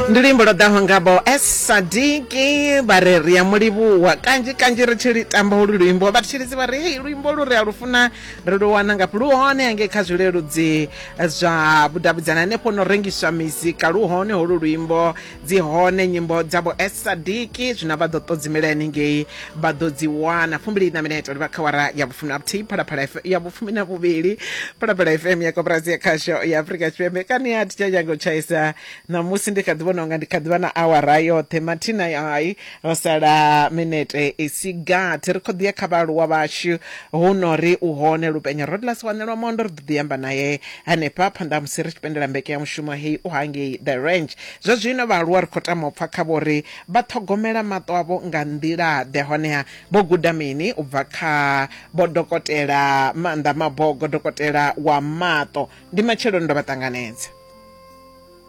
ndi luimbo lwo ḓaho ngabo esadiki vha re ri ya mulivhuwa kanzhi kanzhi ri tshi litamba ulu luimbo vha tshilidzi vha ri hei luimbo lu ri a lu funa ri lu wana ngafhi lu hone hangei kha zwileludzi zwa vhudavhidzana hanefho no rengiswa mizika lu hone holu luimbo dzi hone nyimbo dzavho esadiki zwino vha ḓo ṱodzimela henengei vha ḓo dzi wana fumbili na mineto ndi vha kha wara ya vhufumi na vhuthihi phalaphala F- ya vhufumi na vhuvhili phalaphala fm ya koporasi ya khasho ya afurika tshipembe kani ya titsha tshango tshaisa ṋamusi ndi kha ḓi vhona unga ndi kha ḓi vha na awara yoṱhe mathina ai ro sala minete i si gathi ri khou ḓi ya kha vhaaluwa vhashu hu no ri u hone lupenya rodlas wanelwa mondo ri ḓo ḓi amba naye hanefha phanḓa ha musi ri tshi pendela mbeke ya mushumo hei u hangei the range zwa zwino vhaaluwa ri khou tama u pfa kha vhori Vha ṱhogomela maṱo avho nga nḓila-ḓe? Honeha vho guda mini u bva kha Vho Dokotela Maanḓa Mabogo, Dokotela wa Maṱo? Ndi matsheloni ndo vha ṱanganedza.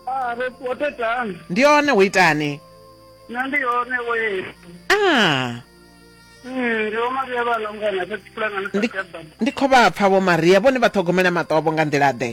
Ah, ro ṱuwa thethani. Ndi hone, wo itani? Nṋe ndi hone, wo yesu. Ah. Mm, ndi Vho Maria vha Longana, fhedzi pulangana sa Ndi, ndi khou vha pfa Vho Maria, vhone vha ṱhogomela maṱo avho nga nḓila-ḓe?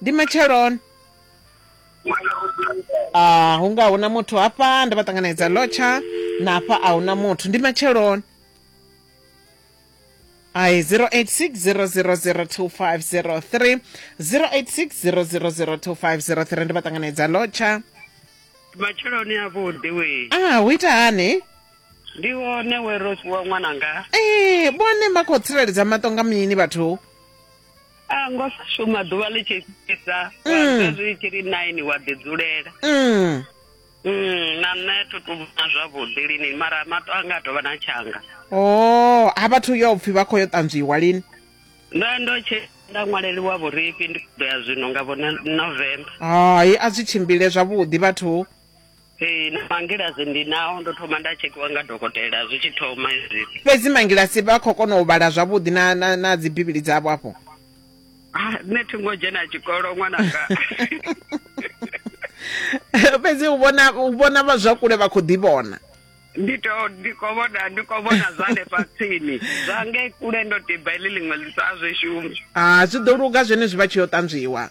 ndi matsheloni ah hu nga huna muthu hafha nda vha ṱanganedza lotsha na hafha a huna muthu ndi matsheloni ai 0860002503 0860002503 ndi vha ṱanganedza lotsha matsheloni avhuḓi we ah hu ita hani ndi wone we ro fhiwa ṅwananga ee vhone vha khou tsireledza maṱo nga mini vhathu a ngo sa shuma ḓuvha ḽi tshi fhisa wa Mm. ḓa zwi tshi ri nine wa ḓi dzulela Mm. Mm, na nṋe thu tu vhona zwavhuḓi lini mara maṱo anga a tovha na tshanga o ha vhathu yo pfhi vha khou yo ṱanzwiwa lini ndo ndo tshe nda ṅwaleliwa vhurifhi ndi ḓo ya zwino nga vhone november hai a zwi tshimbile zwavhuḓi vhathu ee na mangilasi ndi nao ndo thoma nda tshekhiwa nga dokotela zwi tshi thoma izwi fhedzi mangilasi vha khou kona u vhala zwavhuḓi na, na, na dzibivhili dzavho afho Ah, nṋe thi ngo dzhena tshikolo ṅwananga fhedzi u vhona u vhona vha zwa kule vha khou ḓi vhona ndi to ndi khou vhona ndi khou vhona zwa hanefha tsini zwa ngei kule ndo tiba heḽi ḽiṅwe ḽisa a zwi shumi a zwi ḓo luga zwenezwi vha tshi yo ṱanzwiwa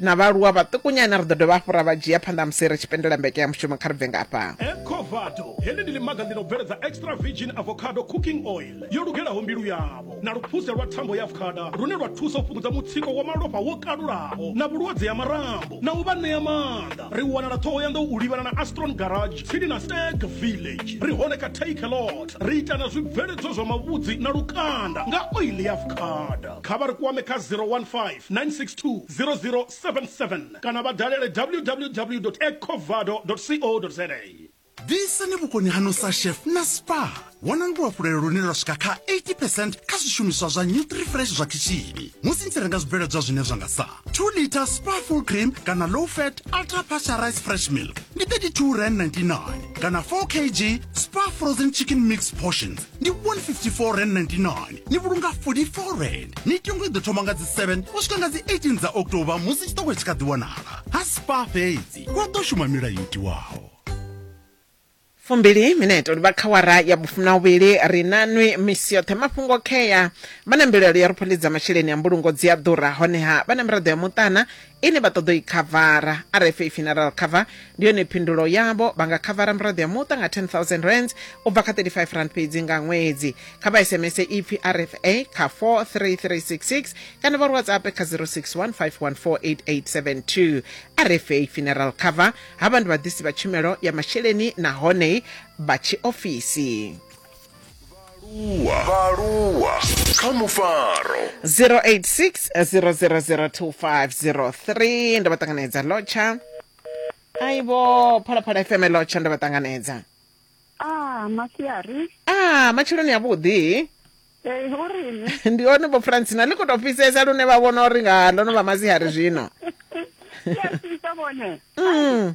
na vhaaluwa vhaṱukunyana ri ḓo dovha hafhu ra vha dzhia phanḓa musi ri tshi pendela mbeke ya mushumo kha ri bve nga afha ecovado heḽi ndi ḽimaga ḽi no bveledza extra virgin avocado cooking oil yo lugelaho mbilu yavho na luphuse lwa thambo ya avocada lune lwa thusa u fhungudza mutsiko wa malofha wo kalulaho na vhulwadze ha marambo na u vha ṋea maanḓa ri wanala ṱhohoyanḓou u livhana na astron garage tsini na stag village ri hone kha take a lot ri ita na zwibveledzwa zwa mavhudzi na lukanda nga oil ya avocada kha vha ri kwame kha 015 962 0077 kana vha dalele www.ecovado.co.za. Ḓisani vhukoni haṋu sa chef na Spar. Vhonani luhafhulelo lune lwa swika kha 80 percent kha zwishumiswa zwa NutriFresh zwa khishini musi ni tshi renga zwibveledzwa zwine zwa nga sa 2 liter Spar full cream kana low fat ultra pasteurized fresh milk ndi 32 rand 99 kana 4 kg Spar frozen chicken mix portions ndi 154 rand 99 ni vhulunga 44 rand mitengo i ḓo thoma nga dzi 7 u swika nga dzi 18 dza october musi tshiṱoko tshi kha ḓi wanala ha spa fhedzi wa ḓo shuma milayo i tiwaho fumbili mineto livha kha wara ya vhufuna uvhili ri na nwi misi yoṱhe mafhungo khea vha na mbilaelo ya ri pholidza masheleni a mbulungo dzi a ḓura honeha vha na miraḓo ya muṱana ine vha ṱoḓa u i khavara. RFA Funeral Cover ndi yone phindulo yavho. Vha nga khavara miraḓo ya muṱa nga 10,000 rands u bva kha 35 rand fhedzi nga ṅwedzi. Kha vha SMS ipfi RFA kha 43366 kana vha ri WhatsApp kha 0615148872. RFA Funeral Cover havha ndi vhaḓisi vha tshumelo ya masheleni nahone vha tshiofisi. vhaaluwa kha mufaro 0860002503 ndo vha ṱanganedza lotsha aibo phalaphala fm lotsha ndo vha ṱanganedza ah masiari ah matsheloni avhuḓi Hey, urini ndi one vho francina ḽi khou tou fhisesa lune vha vhona uri nga ndo no vha masiari zwino ya sisa vhone mm.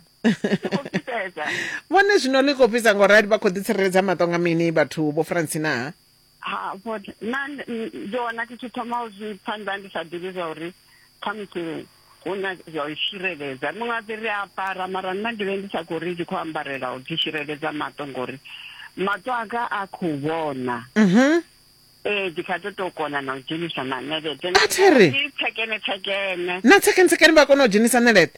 vhone zwino ḽi khou fhisa ngo rali vha khou ḓitsireledza maṱo nga mini vhathu vho francina ha vhone na ndi wana thi tshi thoma u zwi pfa nda ndi sa ḓivhi zwa uri khamusi hu na zwa u tsireledza muṅwe a ḓi ri a ambara mara nna ndi vhe ndi sa khou ri ndi khou ambarela u ḓi tsireledza maṱo ngori maṱo anga a khou vhona mhm. ee ndi kha ḓo tou kona na u dzhenisa na ṋeleṱe na tsekene tsekene na tsekene tsekene vha kona u dzhenisa ṋeleṱe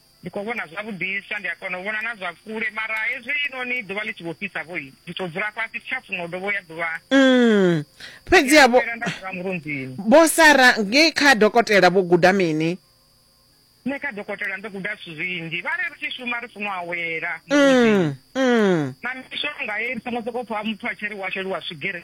ndi khou vhona zwavhuḓisa ndi a kona u vhona na zwa kule mara hezwi inoni ḓuvha ḽi tshi vho fhisa vho ndi tou dzula fhasi thi tsha funa u dovho ya ḓuvha mm. fhedzi ya vho sara ngei kha dokotela vho guda mini nṋe kha dokotela ndo guda zwithu zwinzhi vha ri ri tshi shuma ri funa u awela mm, mm. na mishonga ye ri songo sokou pfha muthu a tshi ri wa sheliwa swigiri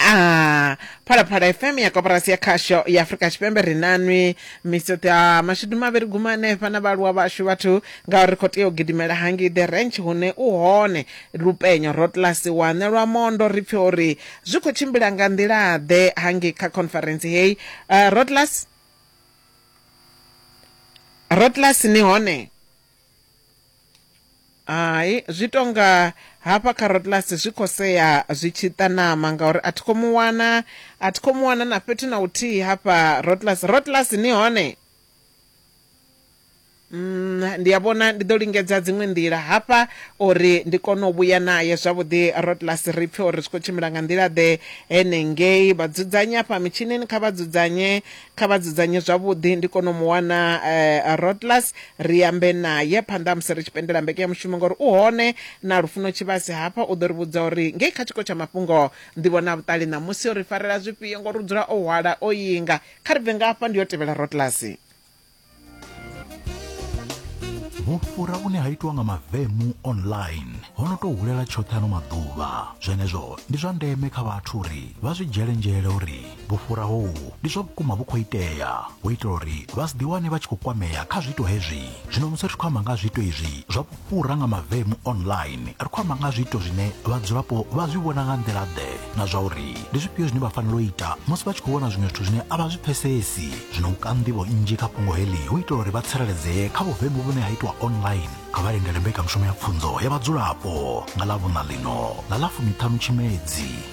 a phalaphala fm ya koporasi ya khasho ya afurika tshipembe ri nanwi misoṱo ya mashudu mavhili guma hanefha na vhaaluwa vhashu vhathu ngauri ri khou tea u gidimela hangei the ranch hune u hone lupenyo rotlasi wane lwa mondo ri pfe uri zwi khou tshimbila nga nḓila-ḓe hangei kha conference heyi uh, rotlasi rotlasi ni hone Hai zwi tonga hafha kha Rotlasi zwi khou sea zwi tshi ita ṋama ngauri a thi khou mu wana, a thi khou mu wana na fhethu na huthihi hafha Rotlasi. Rotlasi ni hone? Mm, ndi a vhona ndi ḓo lingedza dziṅwe nḓila hafha uri ndi kone u vhuya naye zwavhuḓi Rotlasi ri pfhe uri zwi khou tshimbila nga nḓila ḓe henengei. Vha dzudzanye hafha mitshinini kha vha dzudzanye kha vha dzudzanye zwavhuḓi ndi kone u mu wana uh, rodlas ri ambe naye phanḓa musi ri tshi pendela mbekanyamushumo ngori u hone na lufuno tshivhasi hafha u ḓo ri vhudza uri ngei kha tshiko tsha mafhungo ndi vhona vhuṱali ṋamusi o ri farela zwifhio ngori u dzula o hwala o yinga kha ri bve nga hafha ndi yo tevhela rodlas vhufhura vhune ha itwa nga mavemu online ho no tou hulela tshoṱhe ano maḓuvha zwenezwo ndi zwa ndeme kha vhathu uri vha zwi dzhele nzhele uri vhufhura hohu ndi zwa vhukuma vhu khou itea hu itela uri vha si ḓiwane vha tshi khou kwamea kha zwiito hezwi zwino musi ri tshi khou amba nga ha zwiito izwi zwa Fhura nga mavemu online, ri khou amba nga ha zwiito zwine vhadzulapo vha zwi vhona nga nḓila-ḓe na zwa uri ndi zwifhio zwine vha fanela u ita musi vha tshi khou vhona zwiṅwe zwithu zwine a vha zwi pfesesi. Zwino u ka nḓivho nnzhi kha fhungo heḽi hu itela uri vha tsireledzee kha vhuvemu vhune ha itwa online, kha vha lindele mbekanyamushumo ya pfunzo ya vhadzulapo nga Ḽavhuṋa ḽino ḽa ḽa fumiṱhanu Tshimedzi.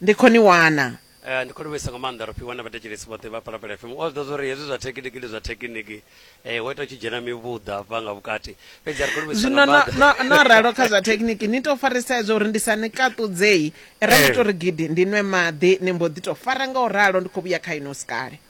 Ndi khou ni wana. Ndi khou livhuisa nga maanḓa ro fhiwa na vhathetshelesi vhoṱhe vha Phalaphala FM. All those uri hezwi zwa thekiniki ndi zwa thekiniki, ho ita hu tshi dzhena mivhuḓa hafha nga vhukati. Fhedzi ri khou livhuisa nga maanḓa. Zwino no, no ralo kha zwa thekiniki, ni tou farisa hezwo uri ndi sa ni kaṱudzei. Ra ndi tou ri gidi, ndi nwe maḓi, ni mbo ḓi tou fara nga u ralo. Ndi khou vhuya kha inwi hu si kale.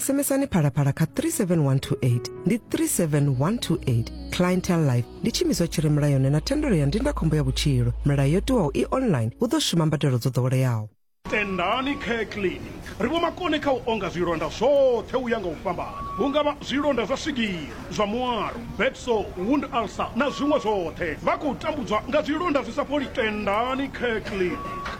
SMSani phalaphala kha 37128 ndi 37128 clientele life ndi tshiimiswa tshi re mulayoni na thendelo ya ndindakhombo ya vhutshilo milayo yo tiwaho i online hu ḓo shuma mbadelo dzo ḓoweleaho tendani care clinic ri vho makone kha u onga zwilonda zwoṱhe u ya nga u fhambana hu nga vha zwilonda zwa swigiri zwa muaro, bed sore, wound ulcer na zwiṅwe zwoṱhe. Vha khou tambudzwa nga zwilonda zwi sa fholi. Tendani Kirkley.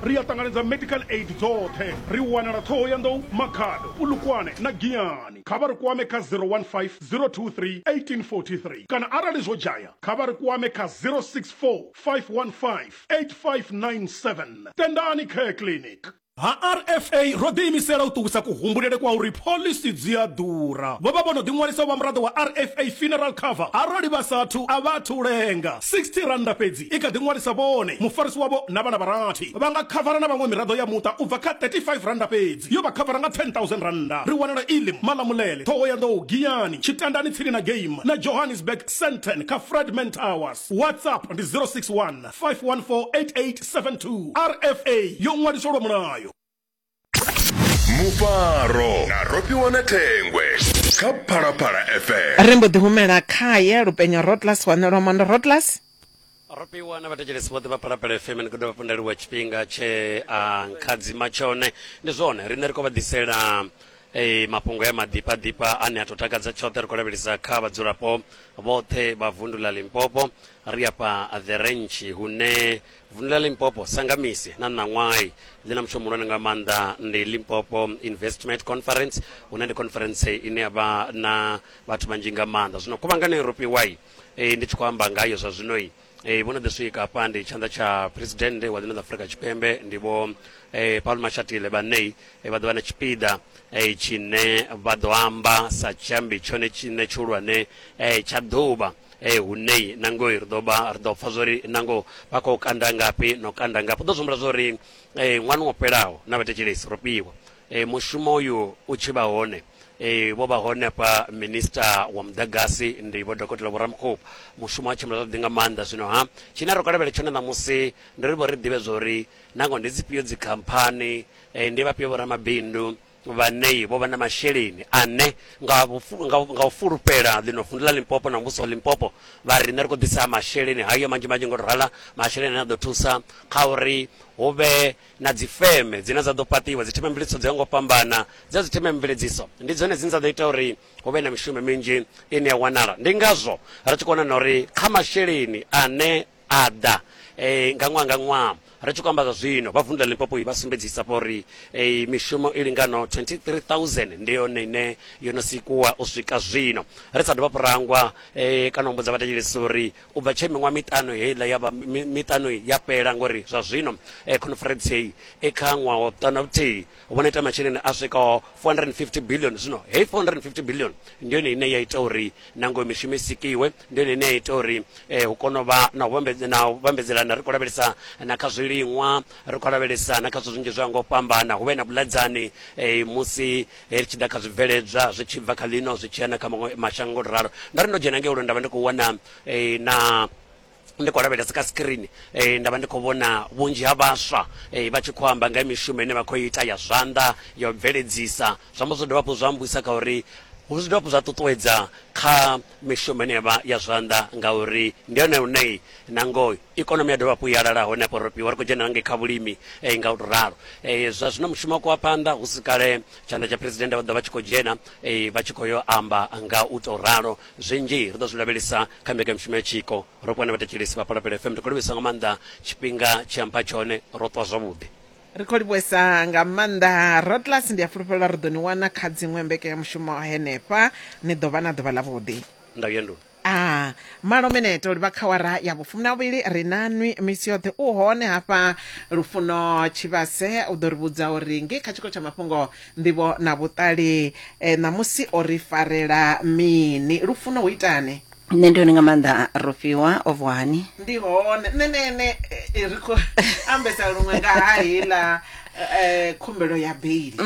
Ri a ṱanganedza medical aid dzoṱhe. Ri wanala Thohoyandou, Makhado, Polokwane na Giyani. Kha vha ri kwame kha 015 023 1843 kana arali zwo dzhaya kha vha ri kwame kha 064 515 8597. Tendani Care Clinic. Ha RFA ro ḓiimisela u ṱuwisa kuhumbulele kwa uri phoḽisi dzi a ḓura. Vho vha vho no ḓiṅwalisa u vha muraḓo wa RFA Funeral Cover arali vha sa athu a vha athu lenga. R60 fhedzi i kha ḓi ṅwalisa vhone, mufarisi wavho na vhana vha rathi. Vha nga khavara na vhaṅwe miraḓo ya muṱa u bva kha R35 fhedzi. Yo vha khavara nga R10,000. Ri wanala Elim, Malamulele, Thohoyandou, Giyani, Tshitandani tsini na Game na Johannesburg, Sandton kha Fredman Towers. WhatsApp ndi 061. 5148872 rfa yo ṅwaliswa lwa mulayo mufaro na rofhiwa na thengwe kha phalaphala fm ri mbo ḓi humela khaye lupenyo rotlas wanelwa mondo rotlas rofhiwa na vhathetshelesi vhoṱhe vha phalaphala fm ni khou dovha pondeliwa tshifhinga tshe a nkhadzima tshone ndi zwone riṋe ri khou vha ḓisela Ee, mafhungo ya maḓiphaḓipha ane a tou takadza tshoṱhe ri khou lavhelesa kha vhadzulapo vhoṱhe vha vundu ḽa Limpopo. Ri afha The Ranch hune vundu ḽa Limpopo sa nga misi na ṋaṅwahi ḽi na mushumo muhulwane nga maanḓa ndi Limpopo Investment Conference hune ndi conference ine ya vha na vhathu vhanzhi nga maanḓa. Zwino khuvhangano i rofhiwai ndi tshi khou amba ngayo zwa zwinoi e, vho no ḓi swika hafha ndi tshanḓa tsha president wa ḽino ḽa afurika tshipembe ndi vho e, paul mashatile vhanei e, vha ḓo vha na tshipiḓa e, tshine vha ḓo amba sa tshiambi tshone tshine tshihulwane e, tsha ḓuvha e, hunei nangoi ri ḓo vha ri ḓo pfa zwori nango vha khou kanda ngafhi no kanda ngafhi ḓo zwihumbula zwori e, ṅwana wo fhelaho na vhathetshelesi ro fhiwa e, mushumo uyu u tshi vha hone Ee, vho vha hone hafha minista wa muḓagasi ndi vho dokotela vho ramukhubu mushumo wa tshimbila zwavhuḓi nga maanḓa zwino ha tshine ro kalavhela tshone ṋamusi ndi ri vho ri ḓivhe zwa uri nangoho ndi dzifhio dzikhamphani eh, ndi vhafhio vho ramabindu vhanei vho vha na masheleni ane nga vhufu- nga nga u fulufhela ḽino vundu ḽa limpopo na muvhuso wa limpopo vha riṋe ri khou ḓisa masheleni hayo manzhi manzhi ngo to rala masheleni ane a ḓo thusa kha uri hu vhe na dzifeme dzine dza ḓo fhaṱiwa, dzithemamveledziso dzo yaho nga u fhambana dza dzithemamveledziso ndi dzone dzine dza ḓo ita uri hu vhe na mishumo minzhi ine ya wanala. Ndi ngazwo ri tshi khou wana na uri kha masheleni ane a ḓa nga ṅwaha nga ṅwaha, ri tshi khou amba zwa zwino vha vunḓu ḽa Limpopo vha sumbedzisa vho ri mishumo i linganaho 23000 ndi yone ine yo no sikuwa u swika zwino, ri sa dovha hafhu ra hangwa kana u humbudza vhathetshelesi uri U bva tshe miṅwaha miṱanu heiḽa ya vha miṱanu ya fhela, ngauri zwa zwino khonferentsi heyi i kha ṅwaha wa vhuṱanu na vhuthihi, vho no ita masheleni a swikaho 450 biḽioni. Zwino heyi 450 biḽioni ndi yone ine ya ita uri nangwe mishumo i sikiwe, ndi yone ine ya ita uri hu kone u vha na u vhambedzelana. Ri khou lavhelesa na kha zwiliṅwa, ri khou lavhelesa na kha zwithu zwinzhi zwo yaho nga u fhambana, hu vhe na vhuḽedzani musi Ri tshi ḓa kha zwibveledzwa zwi tshi bva kha ḽino zwi tshi ya na kha maṅwe mashango ngo to ralo. Ndo ri ndo dzhena ngei lwendo nda vha ndi khou wana na ndi khou lavhelesa kha screen nda vha ndi khou vhona vhunzhi ha vhaswa vha tshi khou amba nga ha mishumo ine vha khou ita ya zwanḓa ya u bveledzisa. Zwa amba zwo dovha hafhu zwa mmbudisa kha uri hu zwi dovha hafhu zwa ṱuṱuwedza kha mishumo ine yavha ya zwanḓa ngauri ndi hone hune na ngoho Ikonomi ya dovha hafhu ya lala hone hafho Ropiwa ri khou dzhena na ngei kha vhulimi nga u tou ralo. Zwa zwino mushumo wo wa phanḓa hu si kale tshanḓa tsha Phresidennde vha ḓo vha vha tshi khou dzhena vha tshi khou yo amba nga u tou ralo. Zwinzhi ri ḓo zwi lavhelesa kha mbekanyamushumo ya Tshiko Ropiwa na vhathetshelesi vha Phalaphala FM. Ri khou livhuwesa nga maanḓa tshifhinga tshe a mpha tshone, ro ṱuwa zwavhuḓi. Ri khou livhuwesa nga maanḓa Rodgers, ndi a fulufhela uri ri ḓo ni wana kha dziṅwe mbekanyamushumo henefha. Ni ḓo vha na ḓuvha ḽavhuḓi. Ndau ya nḓuni. A malo minete u livha khawara ya vhufumi na vhuvhili ri na nwi misi yoṱhe u hone hafha lufuno tshivhase u ḓo ri vhudza uri ngei kha tshiko tsha mafhungo nḓivho na vhuṱali eh, ṋamusi o ri farela mini lufuno hu itani nṋe ndi hone nga maanḓa rofhiwa o vuwa hani ndi hone nṋe nṋe nṋe eh, ri khou ambesa luṅwe nga ha heiḽa eh, khumbelo ya beili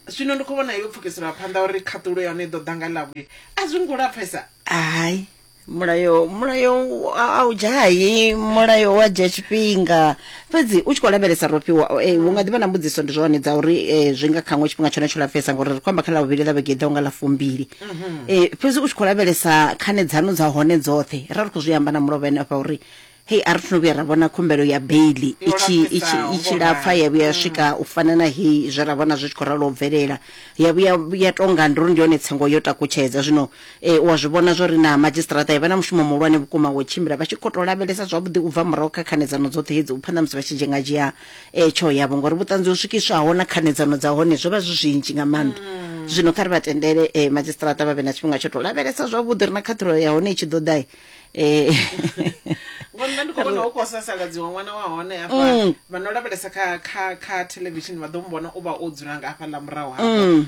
Zwino ndi khou vhona yo pfukiselwa phanḓa uri khaṱulo ya hone i ḓo ḓa nga Ḽavhuvhili. A zwi ngo lapfesa? Hai. Mulayo, mulayo a a u dzhahi, mulayo wa dzhia tshifhinga. Fhedzi u tshi khou lavhelesa ro fhiwa, eh, hu nga ḓi vha na mbudziso ndi zwone dza uri eh, zwi nga kha ngo tshifhinga tshone tsho lapfesa ngori ri khou amba kha Ḽavhuvhili ḽa vhege i ḓaho nga ḽa fumbili. Eh, fhedzi u tshi khou lavhelesa khanedzano dza hone dzoṱhe, ra ri khou zwi amba na mulovha ene afha uri Hei, a ri athu no vhuya ra vhona khumbelo ya beili i tshi, i tshi, i tshi lapfa ya vhuya ya swika u fana na hei zwe ra vhona zwi tshi khou ralo u bvelela. Ya vhuya ya tou nga ndi uri ndi hone tsengo yo takutshedza. Zwino e, u a zwi vhona zwa uri na madzhisiṱaraṱa e vha na mushumo muhulwane vhukuma wa u tshimbila vha tshi khou tou lavhelesa zwavhuḓi u bva murahu kha khanedzano dzoṱhe hedzi u pfa na musi vha tshi dzhengadzhea e, tsheo yavho, ngauri vhuṱanzi ho swikiswaho na khanedzano dza hone zwo vha zwi zwinzhi nga maanḓa. Zwino kha ri vha tendele e, madzhisiṱaraṱa vha vhe na tshifhinga tsho tou lavhelesa zwavhuḓi uri na khaṱhulo ya hone i tshi ḓo ḓa, eh ngori nṋe ndi khou vhona hu khou sasaladziwa ṅwana wa hone Mm. hafha vha no lavhelesa kha kha kha television vha ḓo mu vhona u vha o dzula nga hafha ḽa murahu hafha Mm.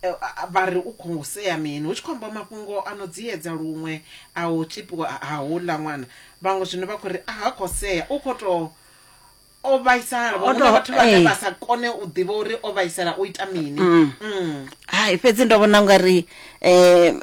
Eh, a- a- vha ri u khou sea mini hu tshi khou amba mafhungo a no dziedza luṅwe a u tshipiwa ha houḽa ṅwana vhaṅwe zwino vha khou ri a ha khou sea u khou tou o vhaisala O vhaṅwe to- vhathu vhane eh. vha sa kone u ḓivha uri o vhaisala o ita mini Mm. hai fhedzi ndo vhona ungari um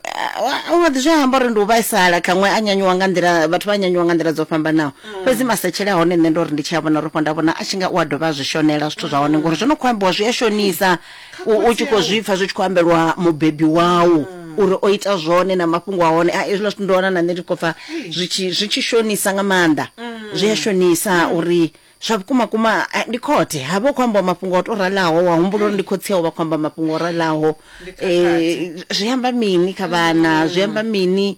wa ḓi zwi amba uri ndi u vhaisala khaṅwe a nyanyuwa nga nḓila vhathu vha nyanyuwa nga nḓila dzo fhambanaho fhedzi masetshele a hone nṋe ndo ri ndi tshi a vhona rofho nda vhona a tshi nga u a dovha a zwi shonela zwithu zwa hone ngori zwo no khou ambiwa zwi a shonisa u tshi khou zwipfa zwi tshi khou ambelwa mubebi wau uri o ita zwone na mafhungo a hone a hezwiḽa zwithu ndo wana na nṋe ndi khou pfa zwi tshi shonisa nga maanḓa zwi a shonisa uri zwa vhukuma kuma ndi khothe ha vha u khou ambiwa mafhungo o to ralaho wa humbula uri ndi khotsi yau vha khou amba mafhungo o ralaho um zwi amba mini kha vhana zwi amba mini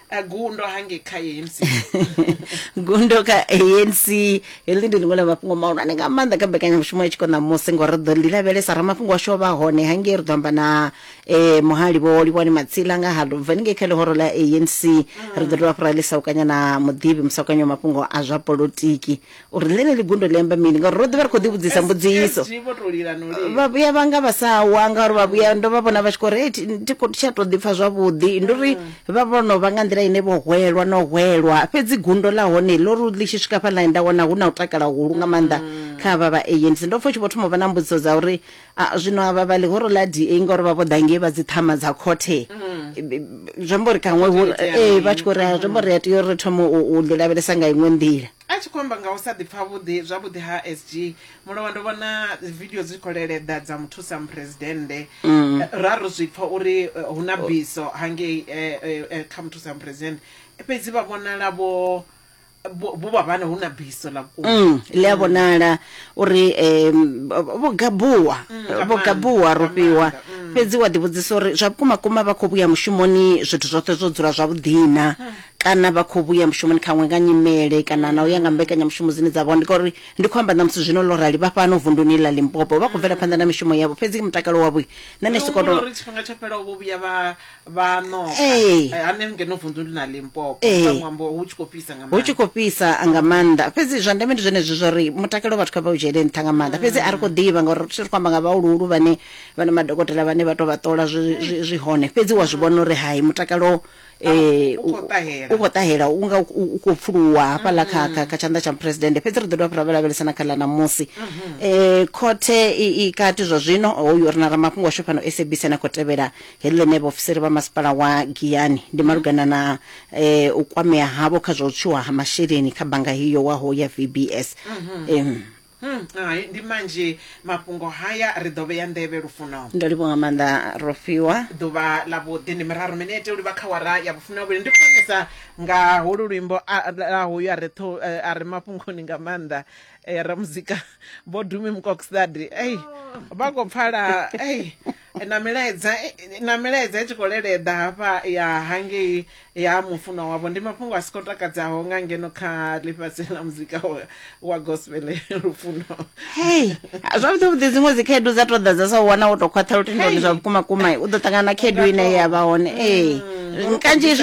Eh, gundo hange kha ANC gundo kha anc heḽi ndi ḽiṅwe ḽa mafhungo mahulwane nga maanḓa kha mbekanyamushumo ya tshiko ṋamusi ngori ri ḓo ḽi lavhelesa ramafhungo washu o vha hone hangei ri ḓo amba na um muhali vho livhani matsila nga ha lubva ni ngei kha ḽihoro ḽa anc ri ḓo dovha fhura ḽisa u kanya na muḓivhi musakanyo wa mafhungo a zwa polotiki uri ḽeneḽi gundo ḽi amba mini ngauri ro ḓi vha ri khou ḓivhudzisa mbudziso vha vhuya vha nga vha sa wa ngauri vha vhuya ndo vha vhona vha tshi khou ri thi khou tsha tou ḓipfa zwavhuḓi ndi uri vha vho no vha nga nḓila ine vho hwelwa no hwelwa fhedzi gundo ḽa hone ḽo ri ḽi tshi swika fha ḽine nda wana hu na u takala hulu nga maanḓa kha vha vha ANC ndo pfha u tshi vho thoma u vha na mbudziso dza uri zwino avha vha ḽihoro ḽa DA ngauri vha vho ḓa ngei vha dzi ṱhama dza khothe zwi amba uri kaṅwe ee vha tshi khou ri zwi amba uri a tea uri ri thome u ḽi lavhelesa nga iṅwe nḓila A tshi khou amba nga u sa ḓipfa vhuḓi zwavhuḓi ha SG Mulowa, ndo vhona video dzi khou leleḓa dza muthusa muphuresidennde mm. eh, ra ro zwi pfa uri eh, hu na biso hangei eh, kha muthusa muphuresidennde fhedzi vha vhonala vho vho vha vhana hu na biso ḽa vhukuma mm, ḽi a mm. vhonala uri um vho gabuwa mm, vho gabuwa ro fhiwa fhedzi wa ḓivhudzisa uri zwa vhukuma kuma vha khou vhuya mushumoni zwithu zwoṱhe zwo dzula zwavhuḓina kana vha khou vhuya mushumoni khaṅwe nga nyimele kana na u ya nga mbekanyamushumo dzine dza vha ndi ngauri ndi khou amba ṋamusi zwino ḽo rali vha fhano vunduni ḽa limpopo vha khou bvela phanḓa na mishumo yavho fhedzi mutakalo wavho nṋe ndi soko to uri tshifhinga tsho fhelaho vho vhuya vha vha noka eh, eh, hane ngeno vunduni ḽa limpopo eh. nga ṅwambo hu tshi khou fhisa nga hu tshi khou fhisa nga maanḓa fhedzi zwa ndeme ndi zwenezwi zwa uri mutakalo vhathu kha vha u dzhiele nṱha nga maanḓa fhedzi a ri khou ḓivha ngauri ri khou amba nga vhahuluhulu vhane vhana madokotela vhane vha to vha ṱola zwi hone fhedzi wa zwi vhona uri hai mutakalo eh, U- u khou ṱahela. u khou ṱahela u nga u- u- u khou pfuluwa hafhaḽa kha, kha, kha tshanḓa tsha muphuresidennde fhedzi ri ḓo dovha ra vhalavhelesa na kha ḽa ṋamusi um khothe i i kati zwa zwino hoyu ri na ramafhungo washu fhano sabc na khou tevhela heḽi ḽine vhaofisiri vha masipala wa giyani ndi malugana na um u kwamea havho kha zwa u tswiwa ha masheleni kha bannga hiyo waho ya vbs Em, Hum, hai ndi manzhi mafhungo haya ri ḓo vhea nḓevhe lufuno. Ndo livhuwa nga maanḓa Rofhiwa. Ḓuvha ḽa vhuḓi ndi miraru minete u livha kha wara ya vhufumi vhavhili ndi khonesa nga holu luimbo a la hoyu a re tho a re mafhungoni nga maanḓa eh, ramuzika vho Dumi Mukoksdadi ei vha khou pfala ei na milaedza na milaedza i tshi khou leleḓa hafha ya hangei ya mufunwa wavho ndi mafhungo a si khou takadzaho nga ngeno kha ḽifhasi ḽa muzika wa gospel lufuno hei zwavhuḓi vhuḓi dziṅwe dzi khaedu dza to ḓa dza sa wana wo to khwaṱha lutendoni zwa vhukuma kuma u ḓo ṱangana na khaedu ine ya vha hone ee mm, kanzhi